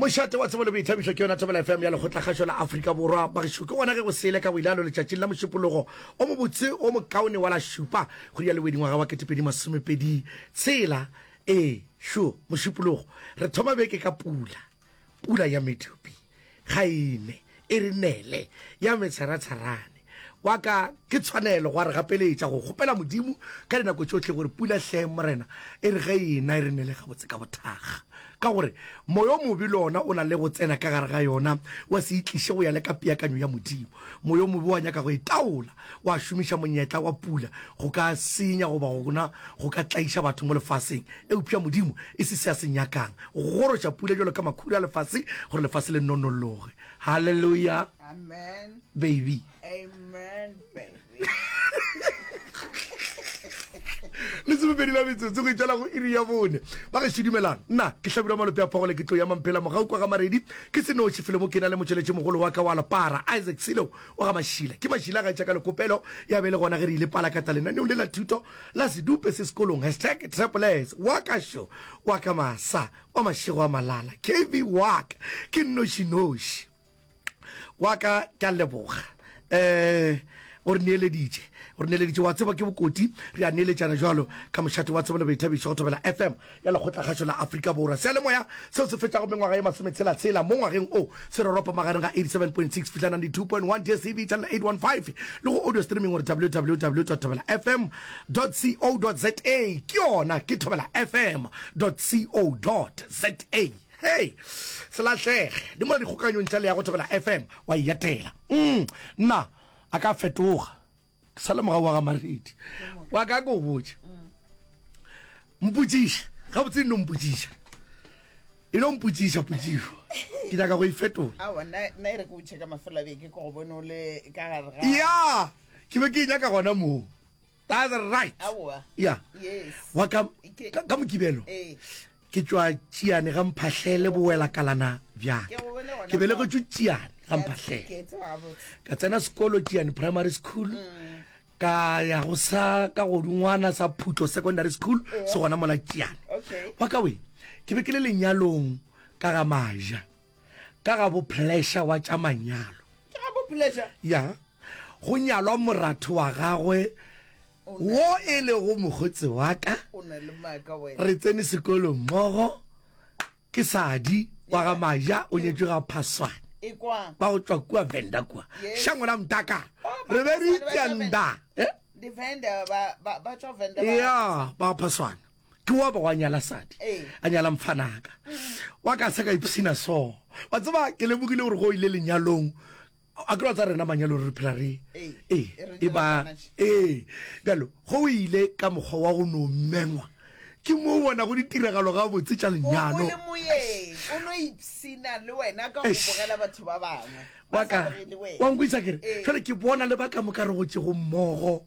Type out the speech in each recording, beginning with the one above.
mošate wa tsebo le boithabišo ke yona thobela fm ya lekgotlakgašo la afrika borwa bagešo ke gona ge go sele ka boilalo letšatšing la mošupologo o mobotse o mokaone wa la šupa go ya lewedingwaga wa ketepedi masomepedi tshela ee šo mošupologo re thoma beke ka pula pula ya medupi Kgaile e re nele ya metsheratsherane wa ka ke tshwanelo gwa re gapeletša go kgopela Modimo ka dinako tšohle gore pula hleng Morena e re ge ena e re nele gabotse ka bothaga ka gore moya o mobe le ona o na le go tsena ka gare ga yona wa se itliše go ya le ka peakanyo ya Modimo moya o mobe wa nyaka go e taola Gwa šomiša monyetla wa pula go ka senya goba gona go ka tlaiša batho mo lefaseng. Eupša Modimo e se se a se nyakang, go goroša pula bjalo ka makhura a lefase gore lefase le nonologe. Haleluya, baby! Lesomepedi la metsotso go itšala go iri ya bone. Ba gešo dumelang, nna ke Hlabirwa Malope a Phagole, ke tlo ya Mamphela mogau kwa ga Maredi. Ke se noši felo mo ke na le motšweletšimogolo wa ka wa lepara, Isaac Silo. wa ga Mašila. Ke Mašila a gaetša ka lekopelo ya be le gona ge re ile palakata lenaneong le la thuto la sedupe se sekolong. Hashtag Trapples wa ka šo wa ka masa wa mašego a malala kv wa ka ke nnošinoši wa ka ke a leboga um o re neeleditše o re neeleditše wa tseba ke bokoti re a neeletšana jalo ka mošate wa tsebo le boithabišo go thobela fm ya Lekgotlakgašo la Afrika Borwa. Seyalemoya seo se fetšago mengwaga ye masometshela-tshela mo ngwageng o se roropa magareng ga 87.6 fihla 92.1 DSTV channel 815 le go audio streaming gore www thobela fm co za ke yona ke thobela fm co za hey selatlege di mola dikgokanyong tša leyago thobela fm wa e yatela mm, nna a ka fetoga ke sa le morago wa ga maredi wa ka ko botse mpotsiša ga botse e no mpotsiša e no mpotsiša potsišo ke nyaka go e fetola ya ke be ke e nyaka gona moo that's right ya wa ka mokibelo ee. Ke tšwa Tšiane ga Mphahlele bowelakalana bja ka. Ke belegetšwe Tšiane ga Mphahlele. Ka tsena sekolo Tšiane Primary School ka ya go sa ka godingwana sa Phutlo Secondary School se gona mola Tšiane. Wa ka we, ke be ke le lenyalong ka ga Maja. ka ga bo pleasure wa tša manyalo ke ga bo pleasure ya go nyalwa moratho wa gagwe wo e lego mokgotsi wa ka o na le maaka wena re tsene sekolo mmogo ke sadi wa ga maja o nyetswe ga phaswane e kwa ba go tswa kua venda kua Yes. shango la mtaka Oh, ba re be re phaswane ba tša- itšanda eh? di vendor ba ba ba tswa vendor ba- ya ba phaswana ke wa ba wa nyala sadi a nyala mfanaka wa ka se ka ipsina so wa tseba ke lebogile gore go ile lenyalong a ke tsa rena manyalo re phela re ee e ba ee bjalo go ile ka mokgwa wa go no mengwa ke mo bona go ditiragalo ga botse tša lenyalo wa nkwisa kere fele ke bona le ba ka moka re gotse go mmogo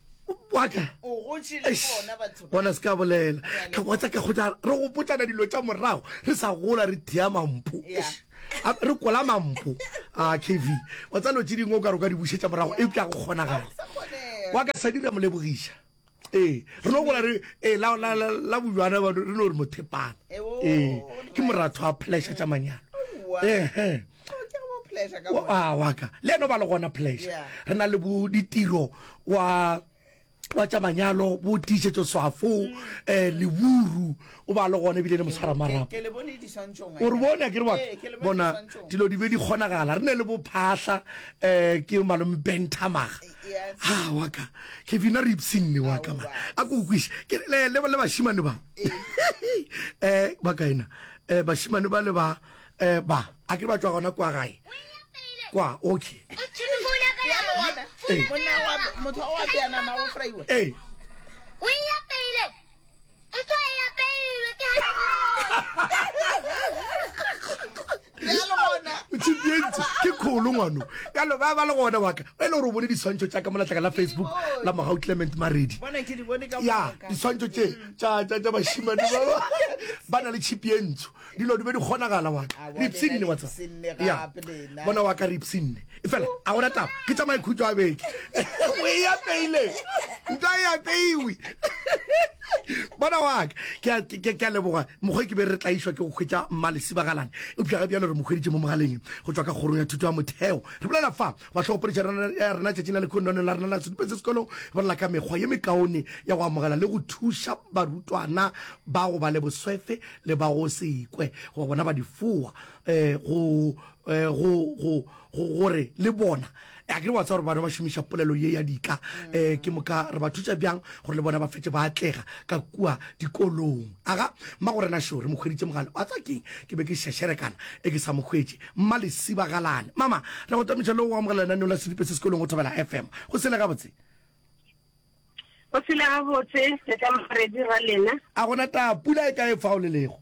waka bona se ka bolela ka kwa tsa ka go tla re go potsana dilo tša morago re sa gola re thea mampo re kola mampo a kv wa tsa lo tse dingwe o ka re ka di bušetša morago e ka go kgonagala wa ka sa dira molebogiša ee re no gola re ee la bojwana re no re mothepana ee ke moratho a pheleša tša manyalo ehe wa wa ka le eno ba le gona pleasure Yeah. re na le bo ditiro wa wa tša manyalo bo tiišetso swafo um leburu o ba le gona ebile le motshwara marapo Mm. Ke- ke le bone diswantšhong, o re bone a ke re wa Ee, ke le bone bona diswantšhong. dilo di be di kgonagala re ne le bophahla um ke malome bentamaga Yes. a wa ka kevina re ipsinne wa ka Aowa. mara a ko kweše ke re, le le- le bašimane ba um ba kaena um bašimane ba le ba E, ba, a ke ba tšwa gona kwa gae? Kwa, okay. E. E. tšhipientse ke kgolo ngwano ka lo ba ba le gona waka e le gore o bone diswantšho tša ka molatlaka la facebook la mogau clement maredi ya diswantšho tše tša bašimane ba ba na le tšhipientso dilo di be di kgonagala wa ka re ipsinne wa tsa ya bona wa ka re ipsinne e fela a gona taba ke tsa maikhutso a beke o e apeile nta e apeiwe bona wa ka ke a leboga mokgwa ke be re tlaišwa ke go kgwetsa mmalesibagalane eupša ga bjalo re mokgweditše mo mogaleng go tswa ka kgorong ya thuto ya motheo re bolela fa wa tlhogopoletša ya rena tšatšing la lekhonone la rena la setupetse sekolong bolela ka mekgwa ye mekaone ya go amogela le go thuša barutwana ba go ba le boswefe le ba go se kwe goba bona ba difowa um go um go go go gore le bona a ke re wa tsa gore bana ba šomiša polelo ye ya dika um ke moka re ba thuša bjang gore le bona ba fetse ba atlega ka kua dikolong aga mma go rena šore mo kgweditše mogale wa tsa keng ke be ke šešerekana e ke sa mo kgwetše mma lesibagalane mama re go tamiša le go amogela lenaneo la sedipe se sekolong go thobela fm go sele gabotse Go phela gabotse le ka maredi ra lena. A go na taba pula e kae fa o le lego?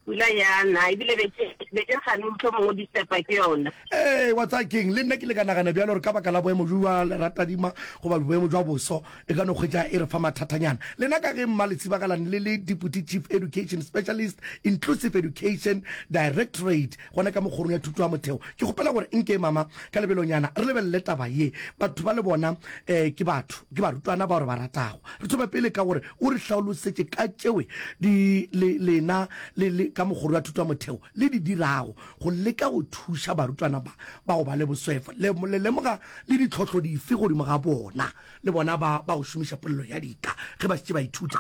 Pula ya na ebile be ke be ke gane motho mongwe o distepa ke yona. Ee, wa tsaya keng? Le nna ke le ka nagana bjalo gore ka baka la boemo jwa leratadima goba boemo jwa boso e ka no kgwetša e re fa mathathanyana. Lena ka ge mma le tshibagalang le le Deputy Chief Education Specialist, Inclusive Education Directorate, Gona ka mo Kgorong ya Thuto ya Motheo, ke kgopela gore nke mama ka lebelonyana re lebelele taba ye. Batho bale bona eh, ke batho, ke barutwana bao re ba ratago. Re thome pele ka gore o re hlaolosetše ka tšewe di, le, lena le, le, ka mo Kgoro ya Thuto ya Motheo le di dirago go leka go thuša barutwana ba, ba go ba le boswefo. Le, le lemoga le ditlhohlo dife godimo ga bona, le bona ba, ba go šomiša polelo ya dika ge ba šetše ba ithuta?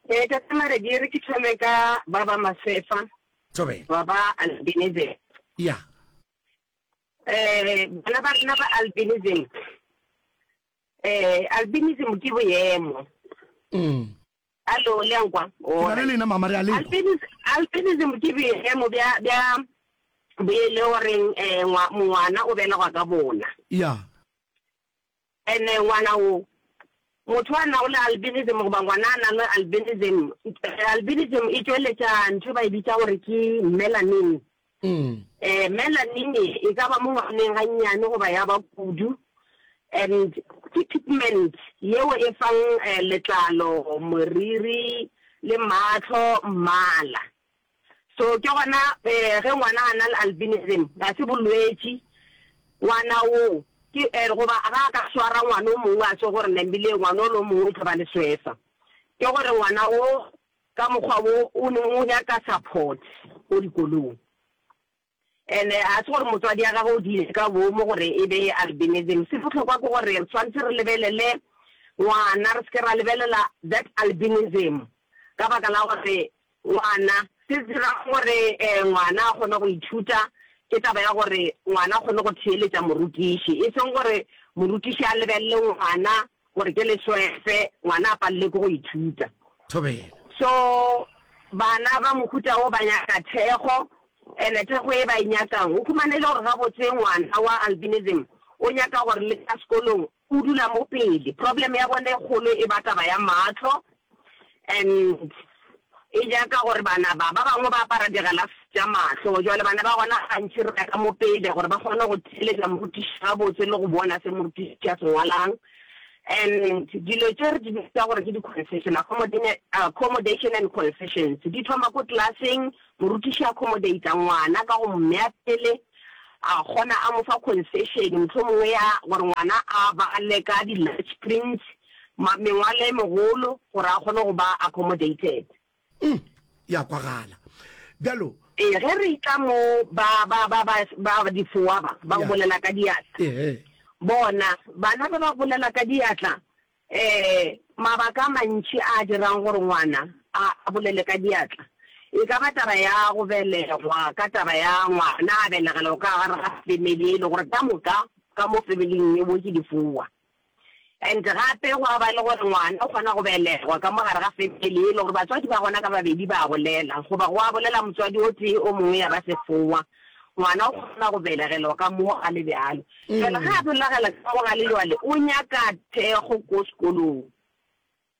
Ee, ka tsamare di re ke thome ka ba ba Masefa, Thobela. ba ba albinism. Ya. Eh, bana ba rena ba albinism. Eh, albinism ke boemo. Mm. Alo, le a nkwa? Ke na le lena mama re a leba. Albinism, albinism ke boemo bja bja bo e le goreng eh, ngwa- ngwana o belegwa ka bona. Ya. And ngwana wo, motho a nago le albinism goba ngwana a nang le albinism, albinism e tšweletša ntho e ba e bitša gore ke melanin. Um, melanin e ka ba mo ngwaneng gannyane goba ya ba kudu. And ke pigment yeo e fang eh, letlalo, moriri le matlho mmala. So ke gona eh ge ngwana a na le albinism ga se bolwetši ngwana o ke eh goba ga a ka swara ngwana o mongwe a se gore nambile ngwana o le o mongwe o tlo ba le swesa ke gore ngwana o ka mokgwa wo o ne o nyaka support ko dikolong. And-e ga se gore motswadi ya gagwe o diile ka boomo gore e be albinism. Se bohlokwa ke gore re tshwanetse re lebelele ngwana, re se ke ra lebelela that albinism ka baka la gore ngwana, se dirang gore um ngwana a kgone go ithuta ke taba ya gore ngwana a kgone go theeletša morutiši, e seng gore morutiši a lebelele ngwana Gore ke le swefe, ngwana a palelwe ke go ithuta. Thobela. So bana ba mohuta wo ba nyaka thekgo, and thekgo ye ba e nyakang, o humana e le gore gabotse ngwana wa albinism o nyaka gore le ka sekolong o dula mo pele. Problem ya bone e kgolo e ba taba ya mahlo, And e ja ka gore bana ba ba bangwe ba apara digalase tša mahlo, jwale bana ba gona gantši re ya ka mo pele gore ba kgone go theeletša morutiši gabotse le go bona se morutiši a se ngwalang. And dilo tše re di bitsa gore ke di-concession, accommodation and concessions, di thoma ko class-eng, morutiši a accommodate-a ngwana ka go mo mea pele, a kgona a mo fa concession mohlomongwe ya gore ngwana a bale ka di-large prints, ma, mengwalo e megolo gore a kgone go ba accommodated. Uhm, ya kwagala. Bjalo. Ee, ge re itla mo, ba, ba, ba, ba, ba, ba difoa ba, ba go bolela ka diatla. Ehe. Bona, bana ba ba bolela ka diatla, eh, mabaka a mantši a a dirang gore ngwana a, a bolele ka diatla. E ka ba taba ya go belegwa, ka taba ya ngwana a belegelwa ka gare ga family e le gore ka moka, ka mo family-ing yeo ke difoa. And gape gwa ba le gore ngwana o kgona go belegwa ka mo gare ga family e le gore batswadi ba gona ka babedi ba bolela, goba gwa bolela motswadi o tee o mongwe ya ba sefowa. Ngwana o kgona go belegelwa ka mo a le bjalo. Jwale ga a bolagela ka mo ga le jwale o nyaka thekgo ko sekolong.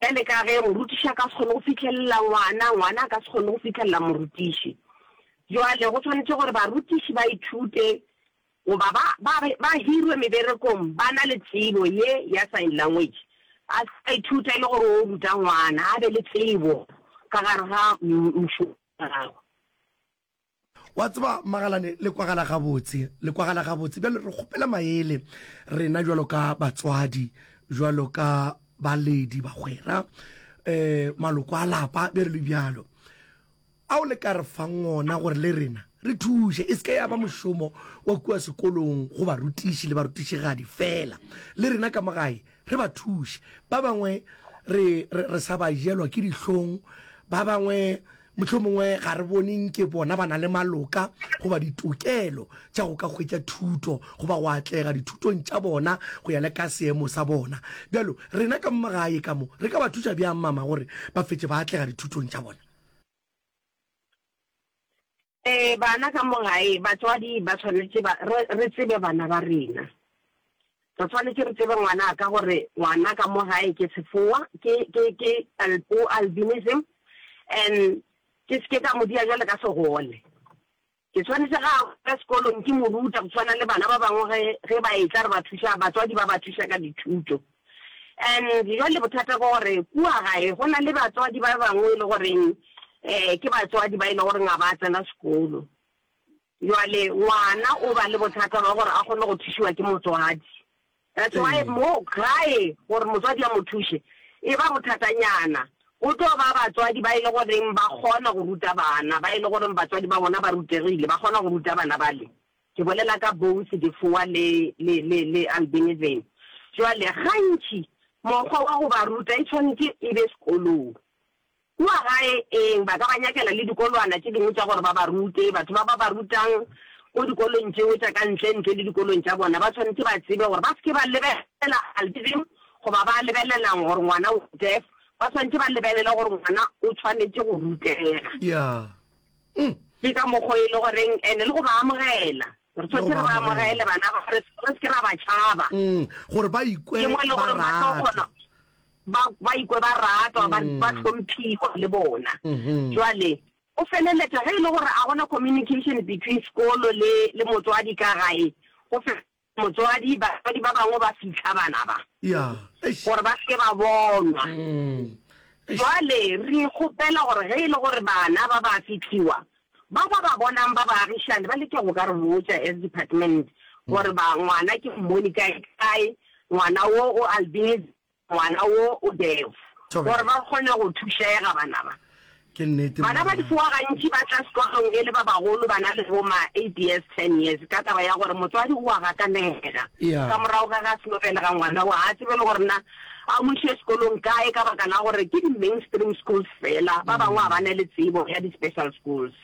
Bjale ka ge morutiši a ka se kgone go fihlelela ngwana, ngwana a ka se kgone go fihlelela morutiši. Bjale go swanetše gore barutiši ba ithute goba ba, ba, ba hirwe meberekong ba na le tsebo ye ya sign language. A se ka ithuta e le gore o ruta ngwana, a be le tsebo ka gare ga m, mšomo wa gagwe. Wa tseba, Magalane, le kwagala gabotse, le kwagala gabotse. Bjale re kgopela maele, rena bjalo ka batswadi, bjalo ka baledi, bagwera, um maloko a lapa, be re le bjalo, ao le ka re fang ona gore le rena re thuše. E se ke ya ba mošomo wa kua sekolong go barutiši le barutišigadi feela, le rena ka mo gae re ba thuše. Ba bangwe re, re, re sa ba jelwa ke dihlong, ba bangwe Mohlomongwe ga re bone nke bona ba na le maloka goba ditokelo tša go ka hwetša thuto goba go atlega dithutong tša bona go ya le ka seemo sa bona. Bjalo, rena ka mo gae ka mo, re ka ba thuša bjang mama gore ba fetše ba atlega dithutong tša bona? Ee, bana ka mo gae, batswadi ba swanetše ba, re, re tsebe bana ba rena. Re swanetše re tsebe ngwana ka gore ngwana ka mo gae ke sefoa, ke, ke, ke alpo, albinism, and ke se ke ka mo dia bjale ka segole. Ke swanetše ge a boela sekolong ke mo ruta go swana le bana ba bangwe ge, ge ba etla re ba thuša, batswadi ba ba thuša ka dithuto. And bjale bothata ke gore kua gae go na le batswadi ba bangwe e le goreng um ke batswadi ba e le goreng ga ba tsena sekolo. Bjale ngwana o ba le bothata ba gore a kgone go thušiwa ke motswadi. That's why mo gae gore motswadi a mo thuše e ba bothatanyana. Go tlo ba batswadi ba e le goreng ba kgona go ruta bana, ba e le goreng batswadi ba bona ba rutegile, ba kgona go ruta bana bale. Ke bolela ka Bones, Difoa le, le, le, le Albinism. Bjale gantši mokgwa wa go ba ruta e tshwanetše e be sekolong. Kua gae, ee, ba ka ba nyakela le dikolwana tše dingwe tša gore ba ba rute. Batho ba ba ba rutang ko dikolong tšeo tša ka ntle, ntle le dikolong tša bona, ba swanetše ba tsebe gore ba se ke ba lebelela albinism goba ba lebelela'ng gore ngwana o deaf. Ba swanetše ba lebelele gore ngwana o tshwanetše go rutega. Ya. Ke ka mokgo e lego goreng, and le go ba amogela. Re tshwanetse re ba amogele bana ba re seke ra ba tšhaba. Mm, gore ba ikwe e ba ratwa ba ikwe ba ratwa ba mm. tlhomphiwa le bona mm-hmm. jwale o feleletsa ge e le gore a gona communication between sekolo le le motswadi ka gae go fe motswadi batswadi ba bangwe ba fitlha bana ba gore ba seke ba bonwa mm. jwale re kgopela gore ge e le gore bana ba ba fitlhiwa Bao ba ba bonang ba baagišani ba leke go ka re botša as department gore ba ngwana ke mmone kae kae, ngwana wo o albinism, ngwana wo o deaf, gore ba kgone go thušega. Bana ba bana ba difoa gantši ba tla sekolong e le ba bagolo ba na le bo ma eight years, ten years ka taba ya gore motswadi o a gakanega ka morago ga ge a seno belega ngwana wo ga a tsebe le gore na A mo iše sekolong kae ka baka la gore ke di-mainstream schools fela, ba bangwe ga ba ne le tsebo ya di-special schools.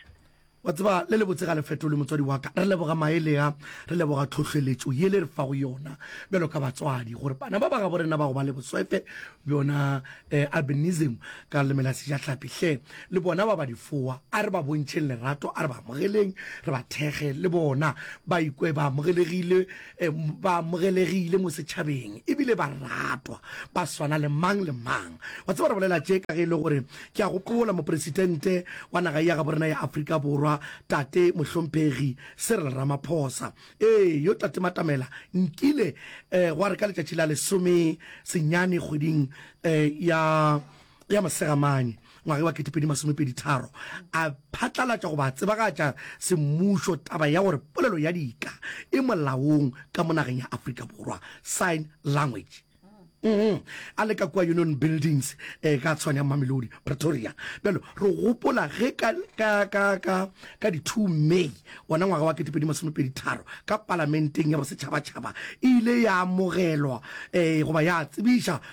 Wa tseba, le le botse ga le fetolwe, motswadi wa ka. Re leboga maele a, re leboga tlhohleletšo ye le re fago yona bjalo ka batswadi, gore bana ba ba gabo rena ba go ba le boswefe bjona, eh, albinism ka leleme la Sejahlapi. Hle, le bona ba ba difoa, a re ba bontšheng lerato, a re ba amogeleng, re ba thekge, le bona ba ikwe ba amogelegile. e, ba amogelegile mo setšhabeng e bile ba ratwa ba swana le mang le mang wa tseba re bolela tše ka ge e le gore ke a gopola moporesitente wa naga ya gabo rena ya aforika borwa tate mohlomphegi serel ramaphosa ee yo tate matamela nkile um gwa re ka letšatši la lesome senyane kgweding um ya ya Mosegamane ngwageng wa 2023 a phatlalatša goba a tsebagatša semmušo taba ya gore polelo ya dika e molaong ka mo nageng ya Afrika Borwa, sign language. Mm-hmm. a le ka kua union buildings eh, ka tshwane ya mamelodi pretoria bjalo re gopola ge ka, ka, ka, ka, ka di-two may ona ngwaga wa ketepedi masomepedi tharo ka palamenteng ya bosetšhabatšhaba e ile ya amogelwa um goba ya tsebiša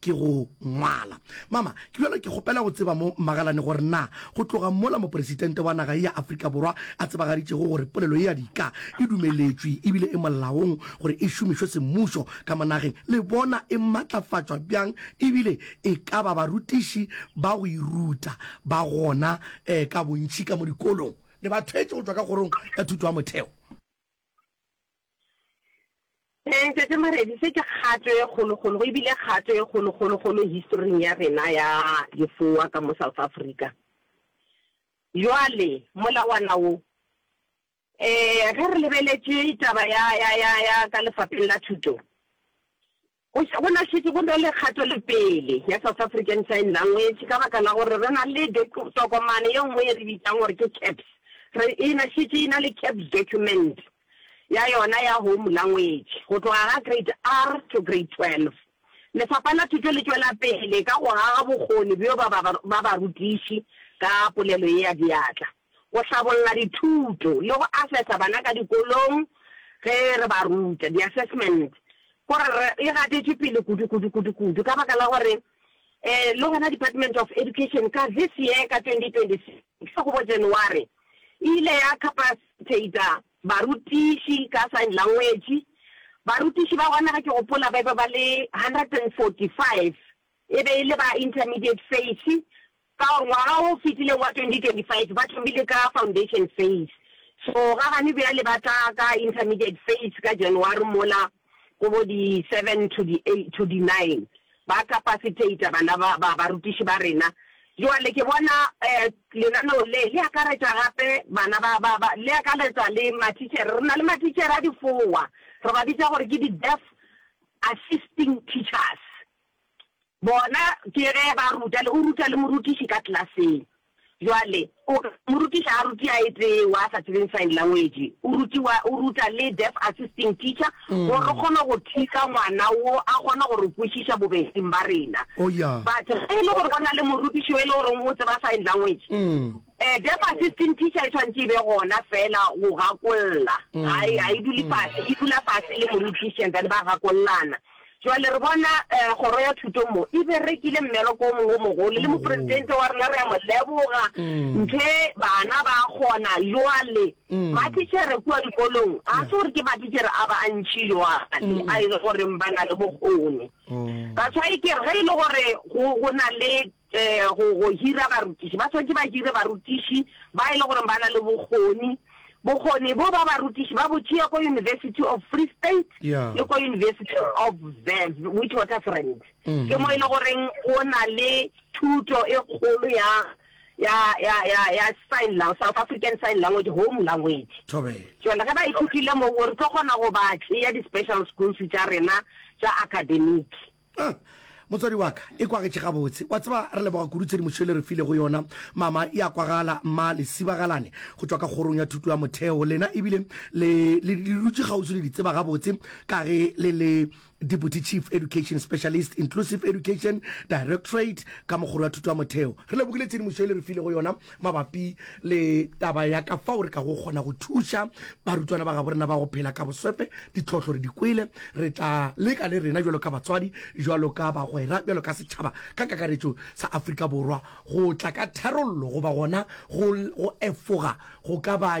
ke go ngwala. Mama, ke bjalo ke kgopela go tseba mo Magalane gore na go tloga mola Mopresitente wa naga ye ya Afrika Borwa a tsebagaditšego gore polelo ye ya dika e dumeletšwe ebile e molaong gore e šomišwe semmušo ka mo nageng, le bona e matlafatšwa bjang ebile e ka ba barutiši ba go e ruta ba gona um ka bontši ka mo dikolong le ba thwetše go tšwa ka Kgorong ya Thuto ya Motheo. Ee, Ntate Maredi, se ke kgato e kgolokgolo go ebile kgato e kgolokgolokgolo historing ya rena ya lefoa ka mo South Africa. Jwale molawana wo, um ge re lebeletše taba ya, ya, ya, ya ka lefapheng la thuto, Go ša go na šetše go na le kgatelopele ya South African Sign Language ka baka la gore re na le tokomane ye nngwe ye re bitšang gore ke CAPS. Re e na šetše e na le CAPS document ya yona ya home language go tloga ga Grade R to Grade 12. Lefapha la Thuto le tšwela pele ka go aga bokgoni bjo ba barutiši ka polelo ye ya diatla. go hlabolla dithuto le go asesa bana ka dikolong ge re ba ruta, di-assessment, ko re re e gatetše pele kudu, kudu, kudu, kudu ka baka la gore eh le gona Department of Education ka this year ka 2026 go bo January e ile ya capacitator barutiši ka sign language. Barutiši ba gona ge ke gopola ba be ba le 145 e be e le ba intermediate face Ka ngwaga o fetileng wa 2025 ba thomile ka Foundation Phase, so ga gane bjale ba tla ka Intermediate Phase ka January mola go bo di 7 to di 8 to di 9. Ba capacitator bana ba, ba, barutiši ba rena. Joale ke bona um lenaneo le, le akaretša gape bana ba, ba, ba, le akaretša le mathitšhere. Re na le mathitšhere a difowa, re ba bitša gore ke di-deaf assisting teachers. Bona, ke ge ba ruta, le o ruta le morutiši ka klaseng. Bjale, o ka, morutiši ga ruti a etee wa a sa tsebeng sign language, o rutiwa, o ruta le deaf assisting teacher, gore re kgone go thusa ngwana wo a kgone go re kwešiša bobeding ba rena. Oh, ya. But ge e le gore go na le morutiši yo e le goreng o tseba sign language, eh, deaf assisting teacher e tshwanetse e be gona feela go gakolla. Ga e, ga e dule fase, e dula fase le morutiši and then ba gakollana. Jwale, re bona Kgoro ya Thuto mo e berekile mmereko o mongwe o mogolo, le Mopresidente wa rena re a mo leboga. Nthe bana ba a kgona. Jwale, matichere kua dikolong, ga se gore ke matichere a bantši jwale a e le goreng ba na le bokgoni. That's why ke re, ge e le gore go, go na le Go, go hira barutiši. Ba swanetše ba hire barutiši ba e le gore ba na le bokgoni. Bokgoni bo ba barutiši ba bo tšea ko University of Free State Yeah. le ko University of Ver- Witwatersrand. Ke mo e le goreng o na le thuto e kgolo ya, ya, ya, ya, ya sign lang, South African Sign Language, home language. Thobela. Jale ge ba ithutile mo, o re tlo kgona go ba tšea di-special schools tša rena tša academic. Huh. Motswadi wa ka, e kwagetše gabotse. Wa tseba, re leboga kudu tshedimošo e le re filego yona, Mama. E a kwagala, Mma. Le sibagalane go tšwa ka Kgorong ya Thuto ya Motheo, lena, ebile le, le, le dutše kgauswi le di tseba gabotse, ka ge le le Deputy Chief Education Specialist, Inclusive Education Directorate, ka mo Kgoro ya Thuto ya Motheo. Re lebogile tshedimošo e le re filego yona. mabapi le taba ya ka fao re ka go kgona go thuša barutwana ba gaborena ba go phela ka boswefe ditlhohlo re di kwele re tla leka le rena jalo ka batswadi jalo ka bagwera jalo ka setšhaba ka kakaretšo sa afrika borwa go tla ka tharollo goba gona go efoga go ka ba